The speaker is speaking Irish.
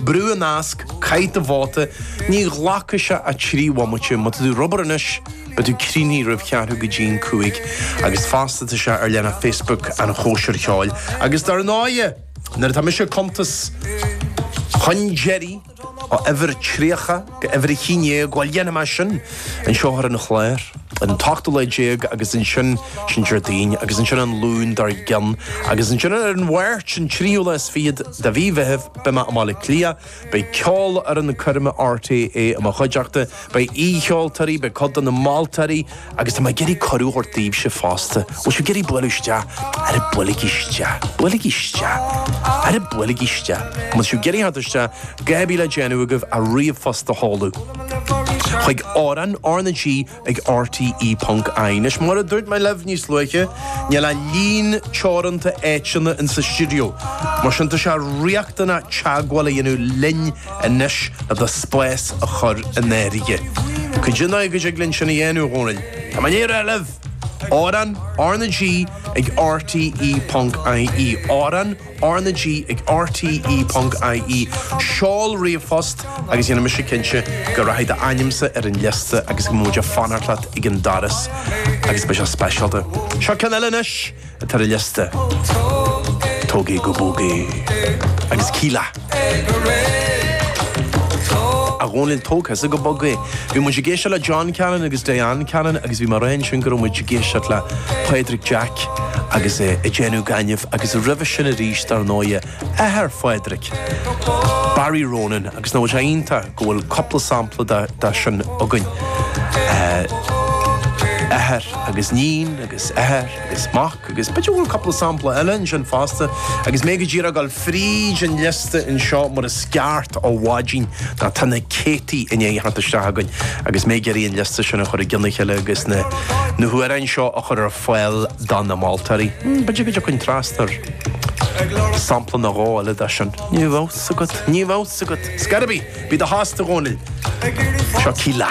Brúigh an nasc, caith do bhóta, ní ghlacfaidh sé ach trí bhomaite, má tá tú ar obair anois, beidh tú críochnaithe roimh cheathrú go dtí'n cúig. Agus fosta tá sé ar leathanach Facebook an chóisir cheoil. Agus dar ndóighe, nuair atá mise ag cuntas chun deiridh ó uimhir 30, Go uimhir a haon déag, bhuel, dhéanfaidh mé sin anseo ar an chlár, an t-ochtú lá déag agus ansin sin Déardaoin agus ansin an Luan dár gcionn agus ansin ar an Mháirt, an tríú lá is fichead de mhí Mheithimh, beidh mé i mBaile Átha Cliath, beidh Ceolfhoireann Choirme RTÉ i mo chuideachta, beidh aoicheoltóirí, beidh cuid de na moltóirí, Agus tá mé ag iarraidh cuireadh a thabhairt daoibhse fosta, bhfuil sibh ag iarraidh bualadh isteach? Aire, buailigí isteach, buailigí isteach. Aire, buailigí isteach. An bhfuil sibh ag iarraidh theacht isteach, cha bhfuil le déanamh agaibh ach ríomhphost a sheoladh chuig Amhrán, R na G, ag RTÉ ponc IE. Anois, mar a dúirt mé libh níos luaithe, níl ach líon teoranta áiteanna in sa stiúideo, mar sin tá sé riachtanach teagmháil a dhéanamh linn anois agus do spás a chur in áirithe. Cad é an dóigh go dtig linn sin a dhéanamh, a Dhónaill. Tá mé i ndiaidh a rá libh! Amhrán, R na G ag rte ponc IE Amhrán, R na G ag rte ponc IE Seol ríomhphost agus dhéanfaidh mise cinnte go rachaidh d'ainmse ar an liosta agus go mbeidh muid ag fanacht leat ag an doras agus beidh sé speisialta. Seo ceann eile anois! atá ar an liosta, Tóg É Go Bog É agus Kíla. A Dhónaill, tóg thusa go bog é. Bhí muid ag éisteacht le John Cannon agus Diane Cannon agus bhí mé ag rá ansin go raibh muid ag éisteacht le Pádraig Jack agus é ag déanamh gainimh agus roimhe sin arís dar ndóighe athair Phádraig, Barry Ronan agus nach rud iontach go bhfuil cúpla sampla de sin againn. Athair agus níon agus athair. is mac, agus b'fhéidir go bhfuil cúpla sampla eile ansin fosta, agus mé go díreach ag gabháil fríd an liosta anseo mar is ceart ó mhaidin, nó tá na céadtaí i ndiaidh a theacht isteach chugainn, agus mé ag iarraidh an liosta sin a chur i gcionn a chéile agus na na hamhráin seo a chur ar fáil do na moltóirí. B'fhéidir go dtiocfainn trasna ar sampla nó dhó eile de sin. Ní bheadh a fhios agat, ní bheadh a fhios agat. Ar scor ar bith, bí i do thost, a Dhónaill. Seo Kíla.